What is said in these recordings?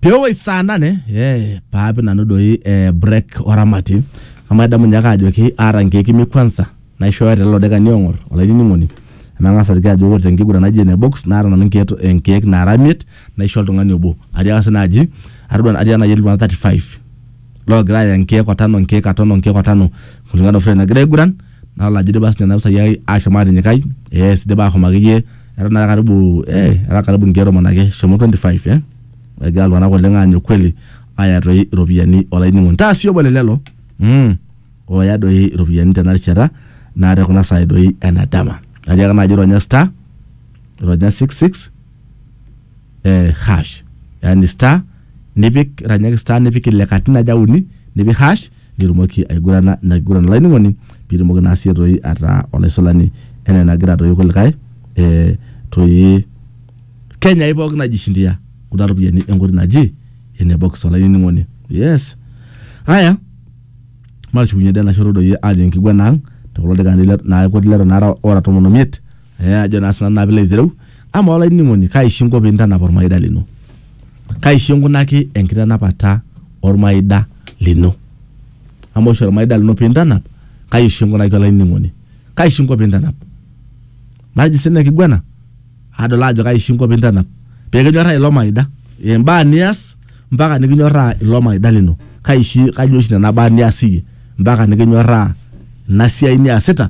Peoi saa nane eh, paapi nanu doi eh, break oramati amu adamu ninye ake ajoki aata inkeek imiet kwanza naishooyo telelo daikani oong'or olainining'oni amu eng'as aliki ajo ore tenkiguran naji ene box naata nanu inkeek inkeek naara imiet naisho oltung'ani obo atiaka sii naaji atodua atiaka naaji etii iltung'anak 35 loogira aaya nkeek otano nkeek aton onkeek otano kulingana ofure nagira aiguran nalo ajo idipa sinye nena pisai ai ashom atinyikai yes idipa ahom akeyie eton naa karibu eh era karibu nkeek tomon ake eshomo 25 eh egira iltung'anak oleng aanyu kweli aaya toi iropiyiani olainining'oni taa sii obo le lelo mm, ooya doi iropiyiani tena rishata naa te kuna saai doi ena dama atiaka naaji ironya star ironya 66 eh, hash yani star nipik ranyaki star nipik ile katitin aja uni nipik hash nitumoki aigurana na kiguran olainining'oni pitumoki naa sie toi ataa olaisulani enaa enagira toi kulikae eh, toi Kenya hii pookin najishindia kuna ropiyiani enkoitoi naji ene box olainining'oni yes haya matushukunye dee enashoto doi ajo enkiguana ang tekulo dakikani le- naa kuti leton aara ora tomon omiet eh, ajo naa sinanu naa pilo aitereu ama olainining'oni kaisho inko pintanap ormaida lino kaisho inkunaki enkitanapata ormaida lino ama oshi ormaida lino pintanap kaisho inkunaki olainining'oni kaisho inko pintanap matejo sina kiguana adol ajo kaisho inko pintanap pekinyorraa ilo maida imbaa nias mpaka nikinyorraa ilo maida lino kaishi kaji oshi nena baa nias iyie mpaka nikinyorraa ina siai niasita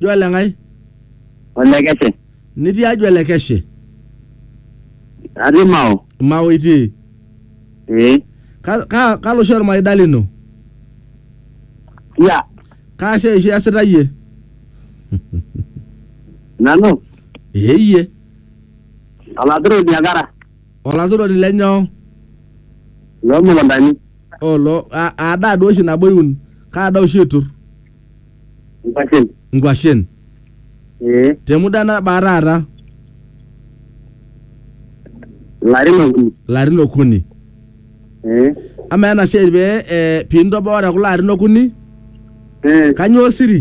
Jua le Nkai. Olekeshe. Nitii ajua le keshe. Atii Mao. Mao itii. Ee. Ka- ka- Kalo oshi olmaida lino? Sia. Kaa siai oshi iasita iyie? Nanu. Ee iyie. Olaturoni akara. Olaturoni le nyoo? Loo mukuntani. Olo a- aa daa duo oshi nabo iun? Kaa daa oshi itur? Nkwashen. nkwashen Ee. te muda nabaa taata Larin okuni. larin okuni Ee. amaa ena siai pee eh, pintoboo te kulo arin okuni Ee. kanyoo siri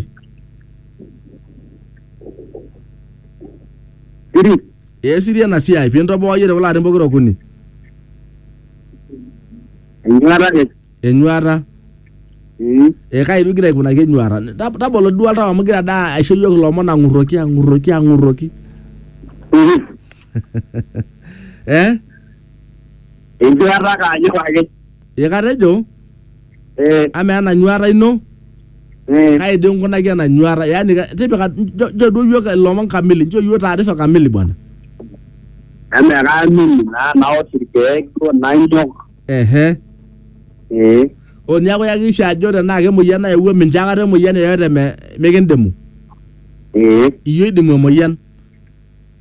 Siri. ee siri ena siai pintobooyie te kulo arin pokira okuni Enyuata ake. enyuata Mm. e kai igira aikunaki enyuata Tab- tabolo duo oltau amu igira daa aisho iyiook ilomon ang'urroki ang'urroki ang'urroki Mhm. eh Enjuata ake anyok ake. ee katejo Eh, amaa ena nyuata ino eh. kai dii inkunaki ena nyuata yaani ka- tipika njo njo duo iyiook ilomon kamili njo iyiook taarifa kamili bwana Eme kaamini naa naosh irkeek duo nanyok. ehe ee o niaku yakikisha ajo tenaa kemoyian nayewuo mincho akata emoyian yoyote me, mikindimu ee iyie oidimu emoyian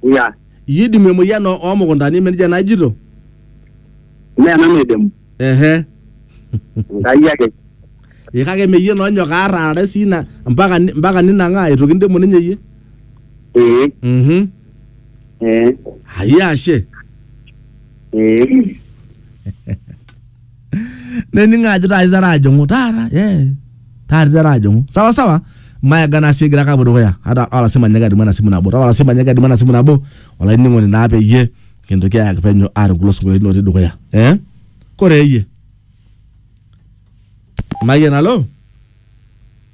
ya iyie oidimu emoyian oo oo mukuntani ime nejia naa ijito mme nanu oidimu ehe enkai ake ee kake ime iyie naa onyok aar aarare sii ina mpaka ni- mpaka ninang'aa itu kindimu ninye iyie ee mhm ee ayia ashe Eh, nening ajo taata iteru ajing'u taata eh, taata iteru ajing'u sawa sawa mayaga naa sii egira ake apuo dukuya ata olasima nyaka adumu ena simu nabo ata olasima nyaka adumu ena simu nabo olainining'oni naa peyie kintoki ayaki penyo aareu kulo sinkolioitin otii dukuya eh? kore eyie mayian alo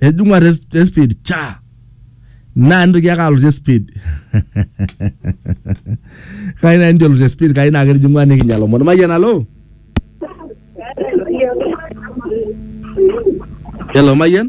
etijing'ua te te speed cha naa nitoki ake alotu te speed kai naa nitu elo te speed kai naa ketijing'ua nikinya lomon mayian alo Hello, Mayian?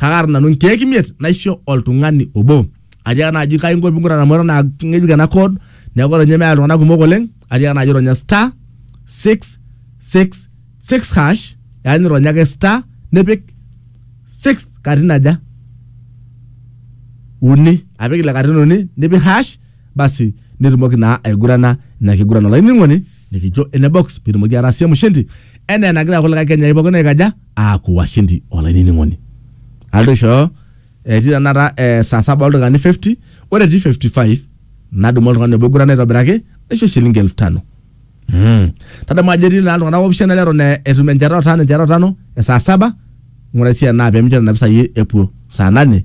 kakaata nanu nkeek imiet naisho oltung'ani obo atiaka naaji kai inko ping'ura amu eton aa ng'ejuk ena code neeku eton ninye meeta iltung'anak kumok oleng atiaka naaji ronya star six six six hash yaani ironya ake star nipik six katitin aja uni apik ile katitin uni nipik hash basi nitumoki naa aigurana ina kiguran olainining'oni nikijo ene box pitumoki atasie mshindi enaa enagira kulikae kenyai pookin aikaja aaku washindi olainining'oni. Aloito aishooyo etii tenakata eh, saa saba oldaikani 50 ore etii 55 nadumu oltung'ani obo oigurana aitobiraki naisho shilingi elfu tano. Mm. Tadamu ajo etii naa iltung'anak opishana leton eh, etum enchata otano enchata otano esaa saba ng'ura sii enaa pemincho nena pisai epuo saa nane